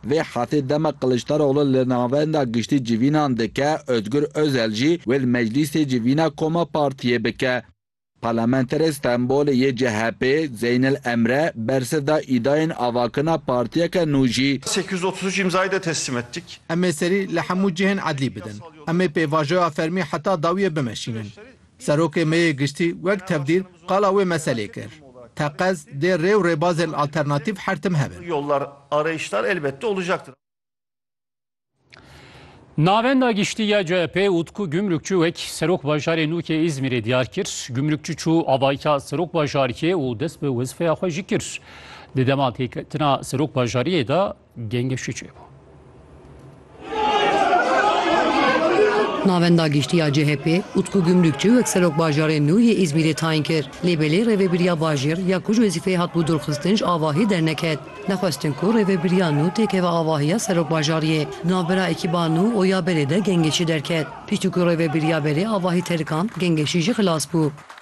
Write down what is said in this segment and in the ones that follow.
Vê hetê dema Kiliçdaroglu li Navenda Giştî civînan dike, Ozgur Ozel jî wê li Meclîsê civîna koma partiyê bike. Parlamenterê Stenbolê yê CHP'ê Zeynel Emre bersiv da îdayên avakirina partiyeke nû jî. Sekiz yüz otuz üç imzayı da teslim ettik. Em ê serî li hemû cihên edlî bidin. Em ê pêvajoya fermî heta dawiyê bimeşînin. Serokê me yê Giştî wek tevdîr qala wê meselê kir, Teqez dê rê û rêbazên alternatîf her tim hebin. Navenda Giştî ya CHP'ê Utku Gümrükçü wek Serok Bajarê nû yê Îzmîrê diyar kir. Gümrükçü çû avayîka Serok Bajarkê û dest bi wezîfeya xwe jî kir. Di dema têketina Serok Bajariyê de, Gengê şû çêbû. Navenda Giştî ya CHP'ê Utku Gümrükçi wek Serok Bajarê nû yê Îzmîrê tayin kir, lê belê rêvebiriya bajêr ya ku ji wezîfeyê hatibû dûrxistin ji avahiyê derneket. Nexwestin ku rêvebiriya nû têkeve avahiya Serok Bajariyê. Di navbera ekîba nû û ya berê de Gengeşî derket. Piştî ku rêvebiriya berê avahî terikand, Gengeşî jî xilas bû.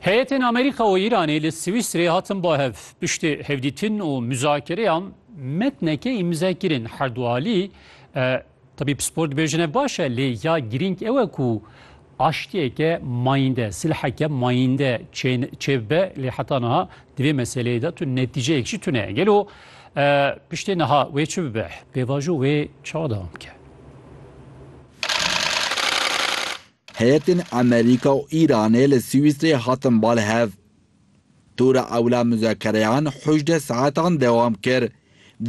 Heyetên Amerîka û Îranê li Swîsrê hatin bo hev. Piştî hevdîtin û muzakereyan metneke îmze kirin. Herdualî tebî pispor dibêjin ev baş e lê ya girîng ew e ku Aştiyeke mayînde, silheke mayînde çêbibe lê heta niha di vê meseleyê de tu netîceyek jî tune. Gelo piştê niha wê çi bibe? Pêvajo wê çawa dewam bike? Heyetên Amerîka û Îranê li Swîsreyê hatin bal hev. Tura ewla muzakereyan hejdeh saetan dewam kir.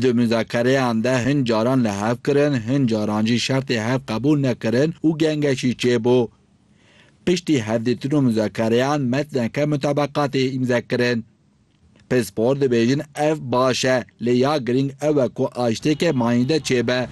Di muzakereyan de hin caran li hev kirin, hin caran jî şertê hev qebûl nekirin û gengeşî çêbû. Piştî hevdîtin û muzakereyan metneke mutabeqatê îmze kirin. Pispor dibêjin ev baş e, lê ya girîng ew e ku aştêke manînde çêbe.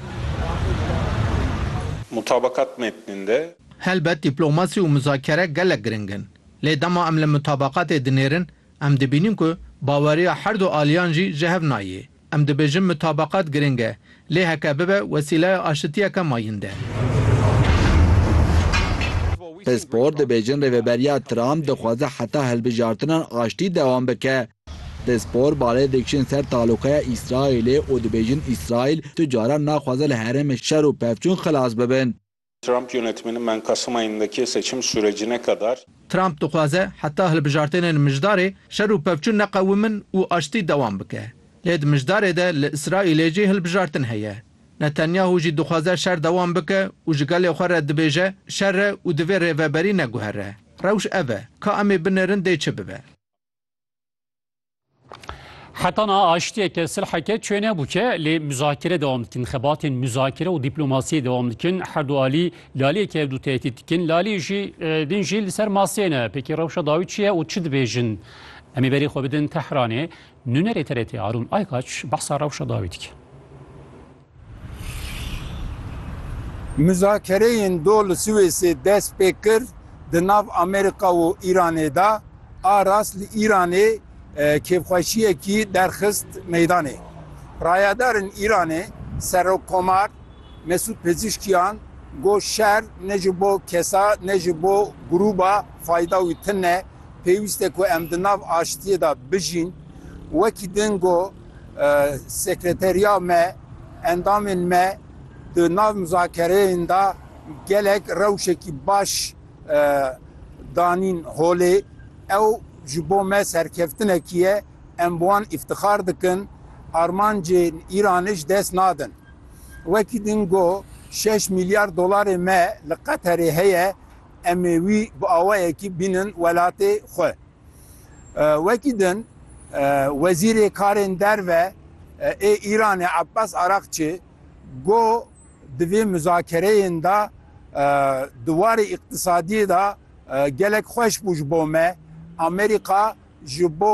Mutabeqat metninde. Helbet dîplomasî û muzakere gelek giring in. Lê dema em li mutabaqatê dinêrin, em dibînin ku baweriya her du aliyan jî ji hev nayê. Em dibêjin mutabaqat giring e, lê heke bibe wesîleya aşitiyeke mayînd e. Pispor dibêjin Rêveberiya Trump dixwaze heta hilbijartinan aştî dewam bike. Pispor balê dikişin ser taloqeya Îsraîlê û dibêjin Îsraîl tu caran naxwaze li herêmên şer û pevçûn xilas bibin. Trump yönetmeni Menkasım ayındaki seçim sürecine kadar. Trump dixwaze heta hilbijartênên mijdarê şer û pevçûn neqewimin û aştî dewam bike. Lê di mijdarê de li Îsraîlê jî hilbijartin heye. Netanyahu jî dixwaze şer dewam bike û ji gelê xwe re dibêje şer e û divê rêveberî neguhere. Rewş ev e. Ka em ê binêrin dê çi bibe. Heta na aştiyeke silheke çê nebû ke lê muzakere devam dikin, xebatên muzakere û dîplomasiyê devam dikin. Her du alî laliyeke ev du tehdît dikin. Lalî jî din jî li ser masê ne. Pêkî rewşa dawî çi ye û çi dibêjin? Em ê berî xwe bidin Tehranê. Nûnerê TRT Arûn Aykaç behsa rewşa dawî dike. Muzakereyên do li Swêsê dest pê kir, di nav Amerîka û Îranê de a rast li Îranê kêfxweşiyekî derxist meydanê. Rayedarên Îranê Serokkomar Mesûd Pezîşkiyan got şer ne ji bo kesa ne ji bo grûba fayda wî tune, pêwîste ku em di nav aştiyê de bijîn. Wekî din got. Sekreteriya me, endamên me di nav muzakereyên de gelek rewşekî baş danîn holê. Ew ji bo me serkeftinekî ye, em bi wan îftixar dikin, armancên Îranê ji dest nadin. Wekî din got, Şeş mîlyar dolarê me li Qeterê heye, em ê wî bi awayekî bînin welatê xwe. Wekî din Wezîrê Karên Derve ê Îranê Abbas Araqçi got, Di vê muzakereyên de di warê îqtisadiyê de gelek xweş bû ji bo me. Amerîka ji bo